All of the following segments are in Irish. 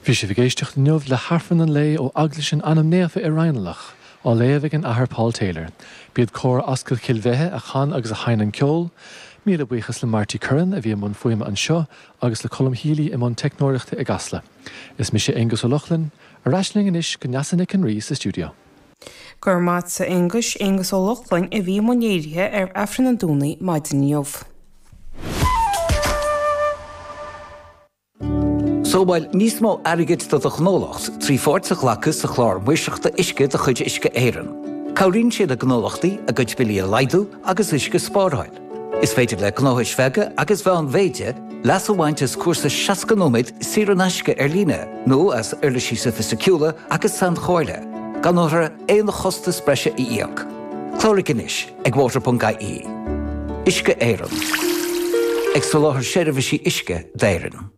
Bhí sibh ag éisteacht inniu le hAifreann an lae ó Eaglais an Ainm Naofa i Raghnallach, á léamh ag an Athair Paul Taylor. B'iad Cór Ascaill Chill Bheithe a chan agus a sheinn an ceol. Míle buíochas le Marty Curran a bhí i mbun fuaime anseo agus le Colm Healy i mbun teicneoireachta i gCasla. Is mise Aonghus Ó Lochlainn. Ar ais linn anois go Neasa Nic an Rí sa stiúideo. Go raibh maith a't a Aonghuis, Aonghus Ó Lochlainn a bhí i mbun léirithe ar Aifreann an Domhnaigh maidin inniu. Sábháil níos mó airgid do do ghnólacht trí pháirt a ghlacadh sa Chlár Maoirseachta Uisce de chuid Uisce Éireann. Cabhraíonn sé le gnólachtaí a gcuid billí a laghdú agus uisce a spáráil. Is féidir le gnóthais bheaga agus mheánmhéide leas a bhaint as cúrsa 60 nóiméad saor in aisce ar líne nó as uirlisí sofaisticiúla agus sainchomhairle, gan ábhar, aon chostas breise a íoc. Cláraigh anois ag water.ie. Uisce Éireann. Ag soláthar seirbhísí uisce d'Éirinn.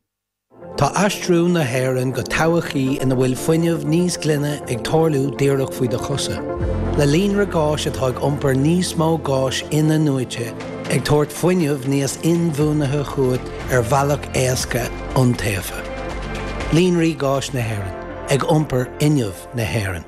Tá aistriú na hÉireann go todhchaí ina bhfuil fuinneamh níos glaine ag tarlú díreach faoi do chosa. Le líonra gáis atá ag iompar níos mó gáis inathnuaite, ag tabhairt fuinneamh níos inbhuanaithe chugat ar bhealach éasca iontaofa. Líonraí Gáis Éireann, ag iompar fhuinneamh na hÉireann.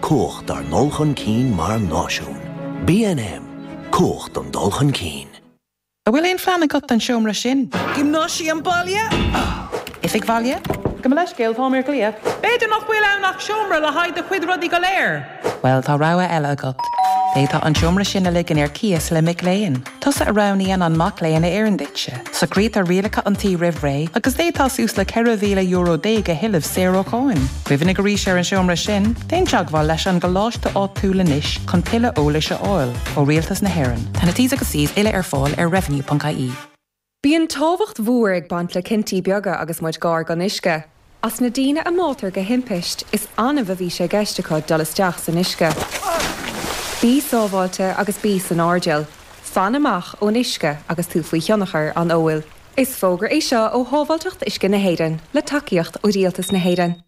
Cumhacht dár ndul chun cinn mar náisiún. BNM, Cumhacht don dul chun cinn. An bhfuil aon phlean agat don seomra sin? Giomnáisiam baile? Oifig bhaile? Gabh mo leithscéal, táim ar ghlao. B'fhéidir nach bhfuil ann ach seomra le haghaidh do chuid rudaí go léir? Bhuel, tá rogha eile agat. D'fhéadfá an seomra sin a ligean ar cíos le mac léinn. Tusa a roghnaíonn an mac léinn a oireann duitse. Socraítear rialacha an tí roimh ré, agus d'fhéadfá suas le €14,000 a thuilleamh saor ó cháin. Cuimhnigh arís ar an seomra sin, déan teagmháil leis an gcoláiste áitiúil anois chun tuilleadh eolais a fháil ó Rialtas na hÉireann. Tá na T's agus C's uile ar fáil ar revenue.ie. Bíonn tábhacht mhór ag baint le cinntí beaga agus muid gar don uisce. As na daoine a bháitear de thimpiste, is annamh a bhí sé i gceist acu dul isteach san uisce. Bí sábháilte agus bí san airdeall. Fan amach ón uisce agus tú faoi thionchar an óil. Is fógra é seo ó Shábháilteacht Uisce na hÉireann, le tacaíocht ó Rialtas na hÉireann.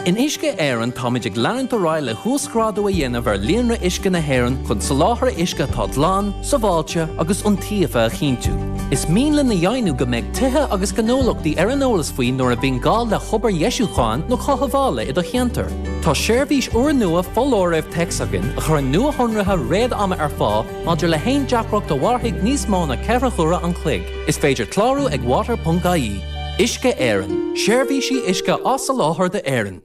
In Uisce Éireann táimid ag leanúint ar aghaidh le huasghrádú a dhéanamh ar líonra uisce na hÉireann chun soláthar uisce atá glan, sábháilte agus iontaofa a chinntiú. Is mian linn a dheimhniú go mbeidh tithe agus gnólachtaí ar an eolas faoi nuair a bhíonn gá le hobair dheisiúcháin nó cothabhála i do cheantar. Tá seirbhís úrnua foláirimh téacs againn a chuireann nuashonruithe réad-ama ar fáil maidir le haon deacracht a mhairfidh níos mó ná ceithre huaire an chloig. Is féidir clárú ag water.ie. Uisce Éireann, seirbhísí uisce á soláthar d'Éirinn.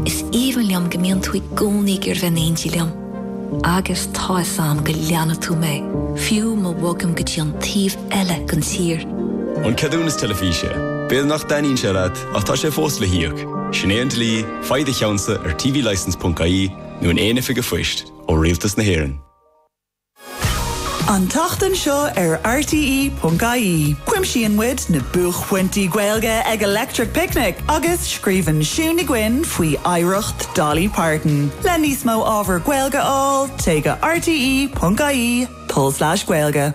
Is aoibhinn liom go mbíonn tú i gcónaí ag goil in éindí liom. Agus tá fhios 'am go leanfaidh tú mé, fiú ma bhogaim go dtí an taobh eile den tír. An ceadúnas teilifíse. B'fhéidir nach dtaitníonn sé leat, ach tá sé fós le híoc. Sin é an dlí, faigh do cheannsa ag tvlicence.ie nó in aon oifig an phoist ó Rialtas na hÉireann. An tseachtain seo ar RTÉ.ie, cuimsíonn muid na buaicphointí Gaeilge ag Electric Picnic agus scríobhann Siún Ní Dhuinn faoi oidhreacht Dolly Parton. Le níos mó ábhar Gaeilge a fháil, téigh go rte.ie tulslais gaeilge.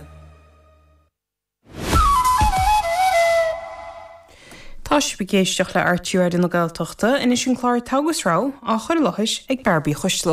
Tá sibh ag éisteacht le RTÉ Raidió na Gaeltachta, anois an clár Togha agus Rogha, á chur i láthair ag Neansaí Ní Choisdealbha.